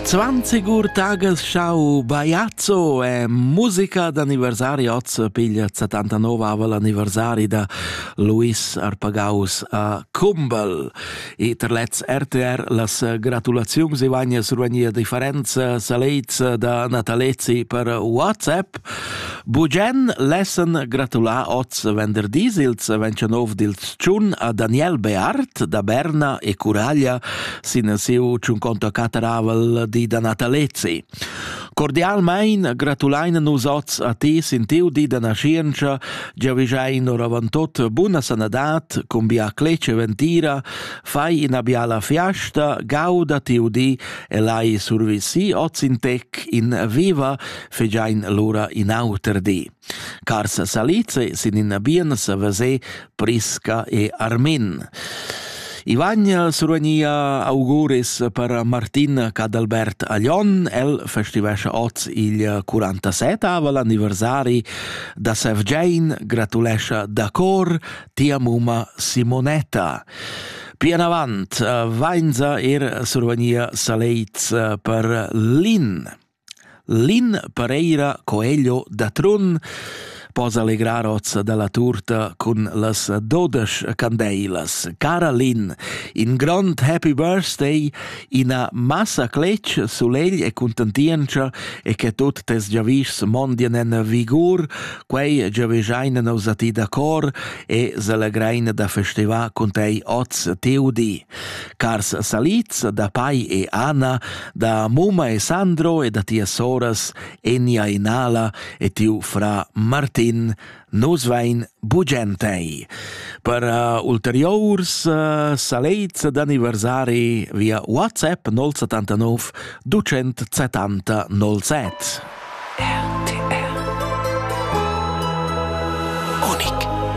Zwanzigur tages schau Baiazzo e musica d'anniversari oz piglia 79 aval anniversari da Luis Arpagaus a Kumbel. E ter lez RTR las gratulaziuns e vagnas ruania differenza salezza da Natalezi per WhatsApp. Bugen lessen gratulà oz venderdis ils 29 dils tschun a Daniel Beart da Berna e Curaglia sin siu tschunconto cateravel di da Natalezi. Cordialmein gratulein nus oz a ti sin tiu di da nascienza, giavischein oravantut buna sanadat, cun bia clece ventira, fai ina biala fiasta, gauda tiu di e lai survisi oz in tec in viva, fegiain lura in auter di. Carsa Salice sin ina biena sa veser Prisca e Armin. I vagn survegnia auguris per Martin Cadalbert Aglion. El festivescia oz il 47-avel anniversari da Sevgein, gratulescia da cor tia muma Simonetta. Pian avant vainza er survegnia Salez per Lin. Lin Pereira Coelho da Trun po selegrar oz dalla tuorta cun las dodesch candeilas. Cara Lin, in grond happy birthday, ina massa cletg, sulegl e contentientscha e che tut tes giavischs mondien en vigur, quei giavischein nus a ti da cor e selegrein da festivar cun tei oz tiu di. Cars salids da pai e Anna, da mumma e Sandro e da tias soras Enia e Nala e tiu fra Martin, nus vein bugen tei. Per uh, ulteriurs uh, salets d'anniversari via WhatsApp 079 270 07. RTR Unik